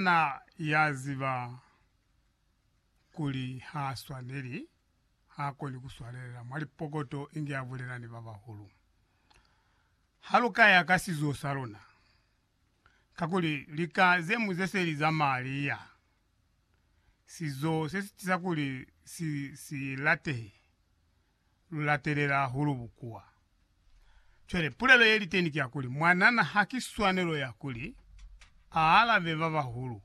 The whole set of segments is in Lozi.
Na ya ziba kuli ha swaneli, ha koni ku swalelela mwa lipokoto inge a bulela ni ba bahulu. Ha lu ka ya ka sizo sa luna, kakuli lika ze mu ze se li za malia, sizo se si tiza kuli si, si latehe. lu latelela hahulu bukuwa. Cwale, pulelo ye li teni ki ya kuli, mwanana ha ki swanelo ya kuli a alabe ba bahulu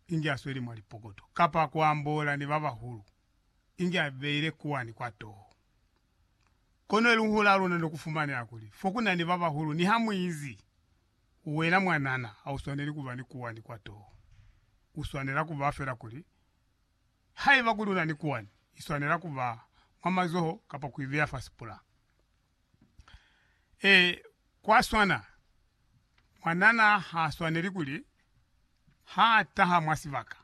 inge a sweli mwa lipokoto, kapa ku ambola ni ba bahulu inge a beile kuwani kwa toho. Kono eluhulo la luna ni ku fumanela kuli, fo ku na ni ba bahulu, niha mu izi, Wena mwanana, ha u swaneli ku ba ni kuwani kwa toho. U swanela ku ba fela kuli Haiba kuli una ni kuwani, iswanela kuba mwa mazoho kapa kuibeya fa sipula. Ee, kwaswana. Mwanana haaswaneli kuli haataha mwa sibaka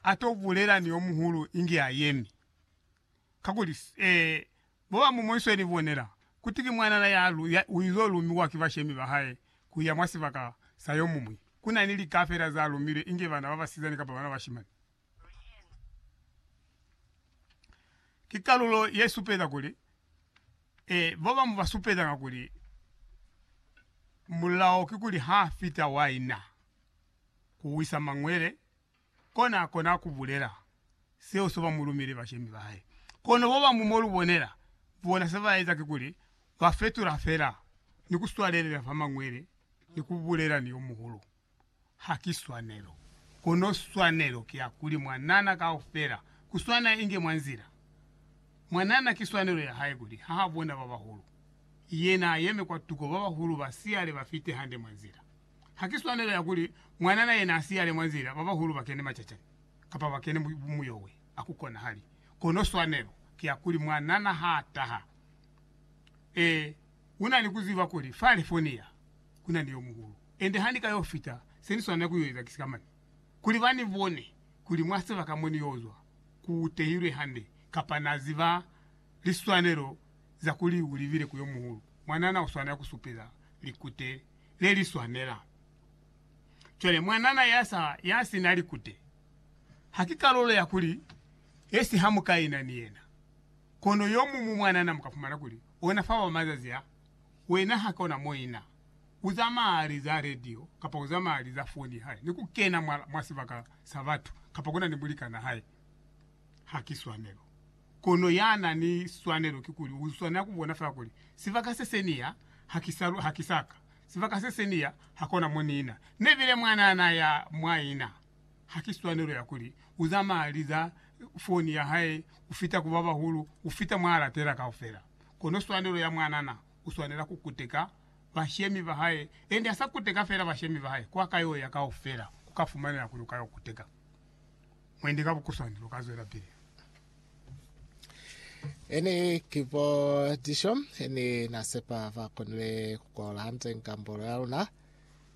ato bulela ni yomuhulu inge ayemi. Kakuli, ee, bobamumoiswe ni bonela kuti ki mwanana ya uizo lumiwa ki bashemi bahae kuya mwa sibaka sa yomuñwi. Kuna ni lika fela za lumilwe inge bana babasizani kapa bana bashimani. Ki kalulo ye supeza kuli ee, ba bañwi ba supezanga kuli mulao kikuli ha fita wa ina ku wisa mañwele, kona a kona ku bulela seo se ba mu lumile bashemi ba hae. Kono ba bañwi mo lu bonela, bona se ba eza kikuli ba fetula fela ni ku swalelela fa mañwele ni ku bulela ni yo muhulu. ha ki swanelo, kono swanelo ki ya kuli mwanana kaufela, kuswana inge mwa nzila. Mwanana ki swanelo ya hae kuli ha bona ba bahulu, yena ayeme kwa tuko ba bahulu ba siyale ba fite hande mwa nzila. Ha ki swanelo ya kuli mwanana yena a siyale mwa nzila ba bahulu ba kene macacani, kapa ba kene muyowe, a ku konahali. Kono swanelo ki ya kuli mwanana ha taha, e. U na ni ku ziba kuli fa Lifoniya ku na ni yo muhulu. Ende ha ni ka yo fita, se ni swanela ku yo eza ki si ka mane, kuli ba ni bone kuli mwa sebaka mo ni yo zwa ku tehilwe hande, kapa na ziba liswanelo za kuli u libile ku yo muhulu. Mwanana u swanela ku supeza likute le li swanela. Cwale, mwanana ya sa, ya si na likute, ha ki kalulo ya kuli ye si hamukaina ni yena. Kono yomuñwi mwanana mu ka fumana kuli ona fa wa mazazi a, wena ha kona mo i na. U zamaya li za radio kapa u zamaya li za foni hae ni ku kena mwa, mwa sibaka sa batu, kapa ku na ni mulikana hae. Ha ki swanelo. Kono ya na ni swanelo kikuli u swanela ku bona fela kuli, Sibaka se se ni ya, ha ki sa, ha ki sa ka. Sibaka se se ni ya, ha kona mo ni na. Ne bile mwanana ya mwa i na. Haki swanelo ya kuli uzamaya liza foni ya hae kufita ku babahulu, kufita mwa alatela kaufela. Kono swanelo ya mwanana, uswanela kukuteka bashemi bahae, ende hasa kuteka fela bashemi bahae, kwa kayoya kaufela, kuka fumanela kuli ukayo kuteka mwendi ka bukuswanelo. Kazwelapili. Ene kibo disho, ene nasepa vakonile kukola hante ngambolo yaluna.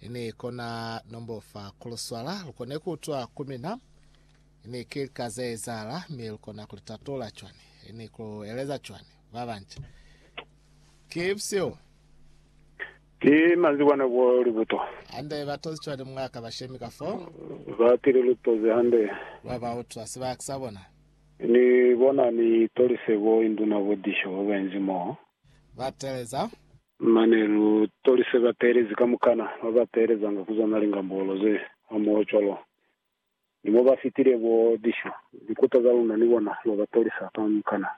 Ini kona nombo fa kuluswala lukone kuutwa ku mina? Ini ki lika zeezahala, mi lukona kulitatola cwani? Ini kulueleza cwani babanca? Ki bushihu. Ki manzwi kwa nako ya libuto. Hande, batozi cwani mwa ka bashemi ka foo? Batile lutozi hande. Lwa bautwa sibaka sa bona. Ni bona ni tolise bo induna bo disho babainzi moo. Ba teleza. Mane lu tolise bateelezi kamukana ba ba teelezanga ku zwa malinga mbolo ze hamoho cwalo ni mo ba fitile bo lisho. Likuta za luna ni bona lwa ba tolisa kamukana.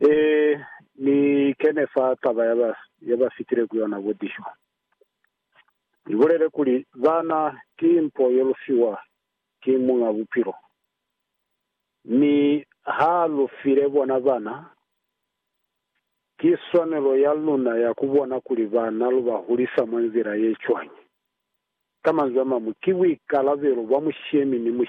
Ee, ni kene fa taba ya ba, ya ba fitile ku yona bo lisho. Ni bulele kuli, Bana ki mpo ye lu fiwa ki Muñ'a Bupilo. Mi ha lu file bona bana. Ki swanelo ya luna ya ku bona kuli bana lu ba hulisa mwa nzila ye cwañi. Ka manzwi a mañwi, ki buikalabelo bwa mushemi ni